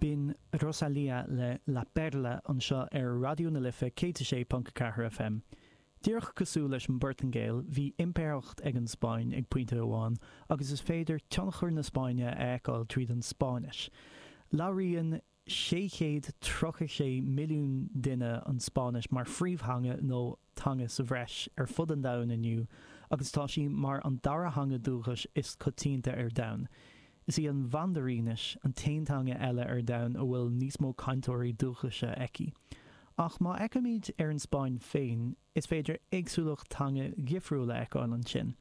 Binn Rosalía le La Perla anseo ar Raidió na Life 106.4 FM. Díreach cosúil leis an bPortaingéil, bhí impireacht ag an Spáinn ag pointe amháin agus is féidir tionchar na Spáinne a fheiceáil tríd an Spáinnis. Labhraíonn. 636 milliún duine an Spáinnis mar phríomhtheanga nó teanga sa bhreis ar fud an domhain inniu agus tá sí mar an dara theanga dúchais is coitianta ar domhan. Is í an Mhandairínis an t-aon teanga eile ar domhan a bhfuil níos mó cainteoirí dúchaise aici. Ach má fheicimid ar an Spáinn féin, Is féidir éagsúlacht teangacha difriúla a fheiceáil ansin.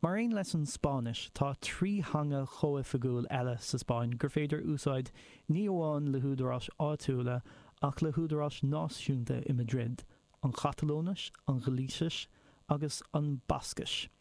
Mar aon leis an Spáinnis, tá trí theanga chomhoifigiúil eile sa Spáinn gur féidir úsáid ní amháin le húdaráis áitiúla ach le húdaráis náisiúnta i Madrid, an Chatalóinis, an Ghailísis agus an Bhascais.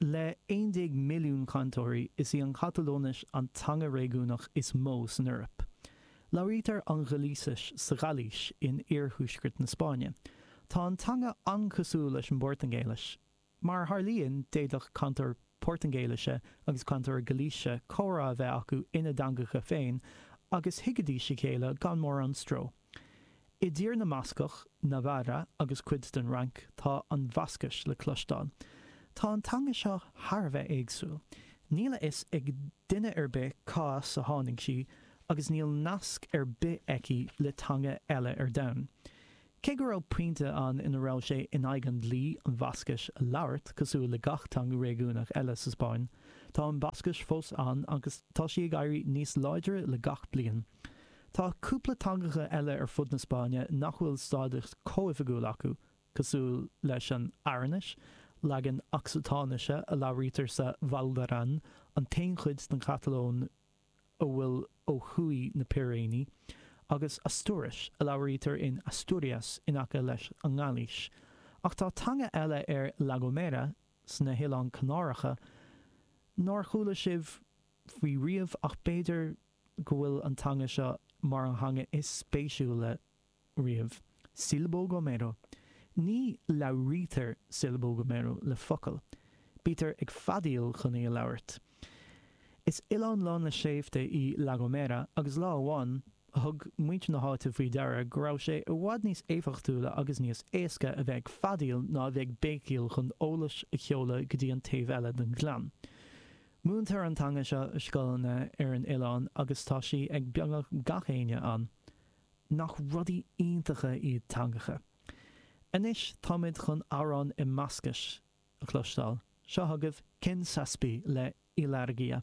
Le 11 milliún cainteoirí, is í an Chatalóinis an teanga réigiúnach is mó san Eoraip. Labhraítear an Ghailísis sa Ghailís in iarthuaisceart na Spáinne. Tá an teanga an-chosúil leis an bPortaingéilis. Mar a tharlaíonn, d'fhéadfadh cainteoir Portaingéilise agus cainteoir Gailísise comhrá a bheith acu ina dteangacha féin agus thuigfidís a chéile gan mórán stró. I dTír na mBascach, Navarra agus cuid den Fhrainc tá an Bhascais le cloisteáil. Tá an teanga seo thar a bheith éagsúil. Níl a fhios ag duine ar bith cá as a tháinig sí agus níl nasc ar bith aici le teanga eile ar domhan. Cé go raibh pointe ann ina raibh sé in aghaidh an dlí an Bhascais a labhairt cosúil le gach teanga réigiúnach eile sa Spáinn, tá an Bhascais fós ann agus tá sí ag éirí níos láidre le gach bliain. Tá cúpla teangacha eile ar fud na Spáinne nach bhfuil stádas comhoifigiúil acu, cosúil leis an Aranais, leagan Ocsatáinise a labhraítear sa Val d'Aran, an t-aon chuid sa Chatalóin a bhfuil ó thuaidh na Piréiní, agus Astúiris, a labhraítear in Asturias in aice leis an nGailís. Ach tá teanga eile ar La Gomera, sna hOileáin Chanáracha, nár chuala sibh faoi riamh ach b'fhéidir go bhfuil an teanga seo mar an theanga is spéisiúla riamh. Silbo gomero. Ní labhraítear Silbo gomero le focail. Bítear ag feadaíl chun í a labhairt. Is oileán lán le sléibhte í La Gomera agus lá amháin thug muintir na háite faoi deara go raibh sé i bhfad níos éifeachtúla agus níos éasca a bheith ag feadaíl ná a bheith ag béicíl chun eolas a sheoladh go dtí an taobh eile den ghleann. Múintear an teanga seo i scoileanna ar an oileán agus tá sí ag beagnach gach éinne ann. Nach rudaí iontacha iad teangacha! Anois táimid chun amhrán i mBascais a chloisteáil. Seo chugaibh Ken Zazpi le Ilargia.